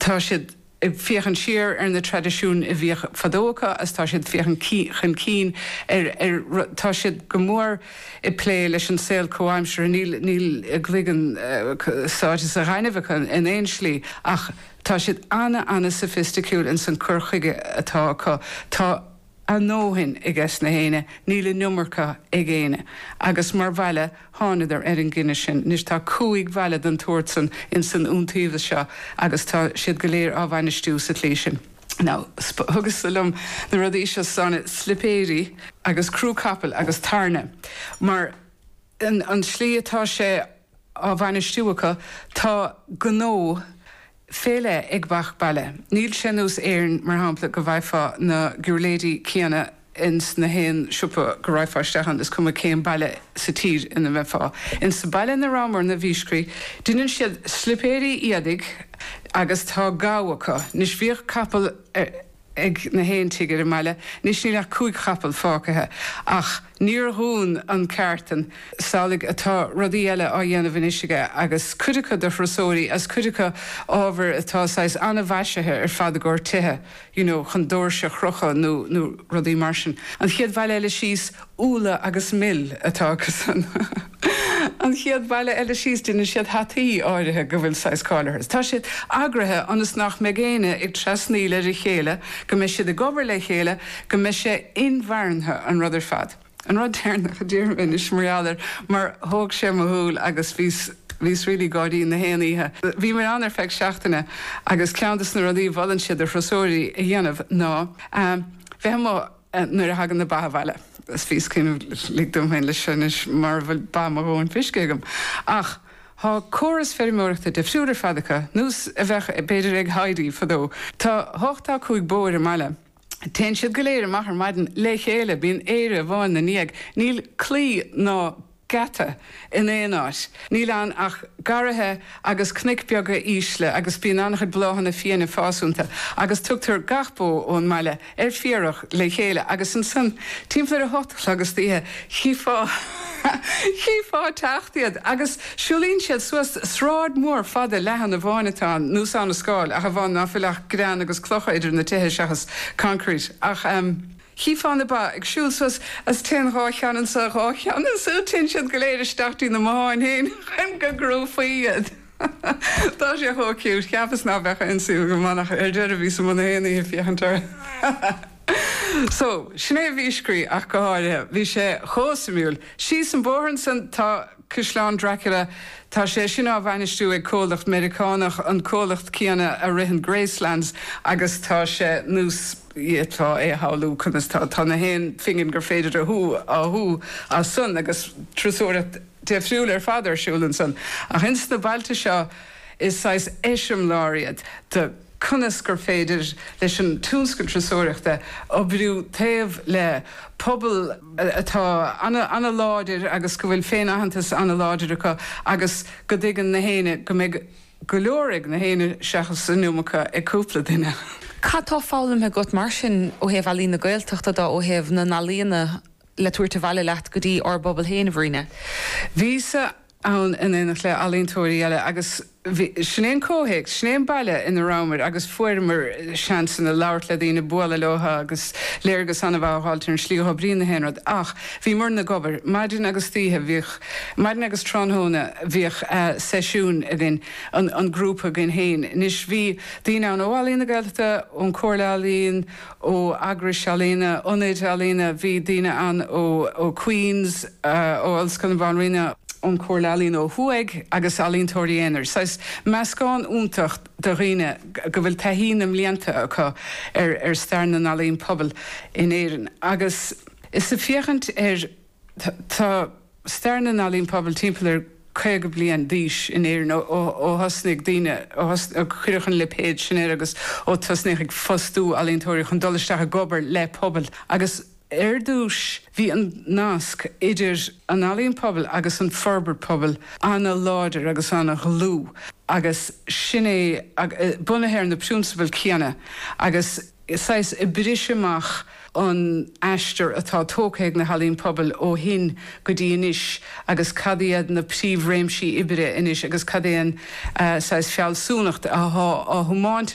Tá siad ag féachaint siar ar na traidisiúin a bhíodh fadó acu agus tá siad ag féachaint chun cinn ar tá siad go mór ag plé leis an saol comhaimseartha níl a gcloigeann sáite sa ghaineamh acu in aon slí ach tá siad ana-ana-soifisticiúil ins an cur chuige atá acu. Tá. a ndóthain ag gach aoinne, níl an iomarca ag éinne, agus mar bhaile thánadar ar an gcinneadh sin. Anois tá cúig bhaile den tsórt san ins an iontaobhas seo agus tá siad go léir á bhainistiú sa tslí sin. Now, thugas-sa liom na rudaí seo san, slipéirí agus crú capaill agus tairne, mar an tslí atá sé á bhainistiú acu, tá gnó fé leith ag gach baile. Níl sé nós Éirinn, mar shampla, go bhfaighfeá na giúirléidí céanna ins na haon siopa go raghfá isteach ann, is cuma cén baile sa tír ina mbeifeá. Insa bhaile ina rabhamar, na Bhiascraí, deineann siad slipéirí éadaigh agus tá gabha acu. Anois, bhíodh capall. ag na haon tigh ar an mbaile, anois níl ach cúig chapall fágtha, ach níor dhún an cheártan. Samhlaigh, tá rudaí eile á dhéanamh anois aige, agus cuid acu do thurasóirí, agus cuid acu ábhair atá saghas an-mhaisithe ar fad i gcomhair tithe, you know, chun doirse a chrochadh nó rudaí mar sin. An chéad bhaile eile síos, Úlla agus mil atá acusan. An chéad bhaile eile síos deineann siad hataí áirithe go bhfuil saghas cáil orthu. Tá siad eagraithe ionas nach mbeidh éinne ag trasnaíl ar a chéile, go mbeidh siad ag obair le chéile, go mbeidh sé inmharthana an rud ar fad. An rud deireanach a déarfaidh mé anois mar gheall air mar thóg sé mo shúil agus bhíos, bhíos really ag gáirí na haon oíche. Bhíomar ann ar feadh seachtaine agus ceann de sna rudaí a mholann siad do thurasóirí a dhéanamh ná bheith amuigh, Ahh, nuair a thagann na ba abhaile. Agus bhíos ag cuimhneamh, lig dom féin leis seo anois, mura bhfuil ba mo dhóthain feiscthe agam. Ach tá córas feirmeoireachta difriúil ar fad acu nós a bheadh b'fhéidir ag Heidi fadó. Tá ochtó cúig bó ar an mbaile. Téann siad go léir amach ar maidin le chéile, bíonn aoire amháin 'na ndiaidh. Níl claí ná. geata in aon áit. Níl ann ach garraithe agus cnoic beaga ísle agus bíonn an-chuid bláthanna fiaine ag fás iontu agus tugtar gach bó ón mbaile ar féarach le chéile agus ansan timpeall ar a hocht a chlog istoíche chífeá chífeá ag teacht iad agus siúlaíonn siad suas sráid mhór fada leathan amháin atá ann nós Abhainn an Scáil ach amháin ná fuil ach grean agus clocha idir na tithe seachas concrete ach. Chífeá na ba ag siúl suas is téann dhá cheann anso, dhá cheann ansiúd, téann siad go léir isteach dtí na mbotháin fhéin chun go gcrúfaí iad. Tá sé chomh cute, cheapas ná beadh a fhios agam ann ach ar deireadh bhíos i mbun a haon oíche ag féachaint orthu. So, sin é Viscri ach go háirithe, bhí sé chomh suimiúil. Síos an bóthar ansan tá Caisleán Dracula, tá sé sin á bhainistiú ag comhlacht Meiriceánach, an comhlacht céanna a ritheann Gracelands agus tá sé nó. ie tá a shamhlú conas atá na haon phingin gur féidir a shú á shú as san agus turasóireacht deifriúil ar fad ar siúl ansan. Ach ins na bailte seo is saghas eiseamláir iad de conas gur féidir leis an tionscal turasóireachta oibriú taobh le pobal atá ana ana láidir agus go bhfuil féinaitheantas ana láidir acu agus go dtuigeann na haoinne go mbeidh go leor ag na haoinne seachas an iomarca ag cúpla duine. Cad tá foghlamtha agat mar sin ó thaobh Ealaín na Gaeltachta de, ó thaobh na n-ealaíona le tabhairt abhaile leat go dtí ár bpobal féin, a Bhriain? Bhíos-sa ann in éineacht le ealaíontóirí eile agus bhí, sin é an comhthéacs, sin é an baile ina rabhamar agus fuaireamar seansanna labhairt le daoine, bualadh leothu agus léargas an-mhaith a fháilt ar an slí a oibríonn na haon rud. Ach bhíomar ann ag obair, maidin agus oíche, bhíodh. Maidin agus tráthnóna bhíodh seisiúin againn, an grúpa againn féin. Anois bhí daoine ann ó Ealaín na Gaeltachta, ón gComhairle Ealaíon, ó eagrais ealaíona, ionaid ealaíona, bhí daoine ann ó Queen's, ó Ollscoil na Banríona, ón gComhairle Ealaíon ó thuaidh agus ealaíontóirí aonair, saghas meascán iontach de dhaoine go bhfuil taithí na mblianta acu ar stair na n-ealaíon pobail in Éirinn. Agus is ag féachaint ar. Tá stair na n-ealaíon pobail timpeall ar 50 bliain d'aois in Éirinn, ó thosnaigh daoine ó cuireadh an lipéad sin air agus ó tosnaíodh ag fostú ealaíontóirí chun dul isteach ag obair le pobail. Agus ar dtús bhí an nasc idir an ealaíon pobail agus an fhorbairt pobail an-láidir agus an-dhlúth agus sin é bunaithe ar na prionsabail céanna agus. saghas ag oibriú amach an aistear atá tógtha ag na healaíon pobail ó shin go dtí anois agus cad iad na príomhréimsí oibre anois agus cad iad na saghas fealsúnacht atá á dtiomáint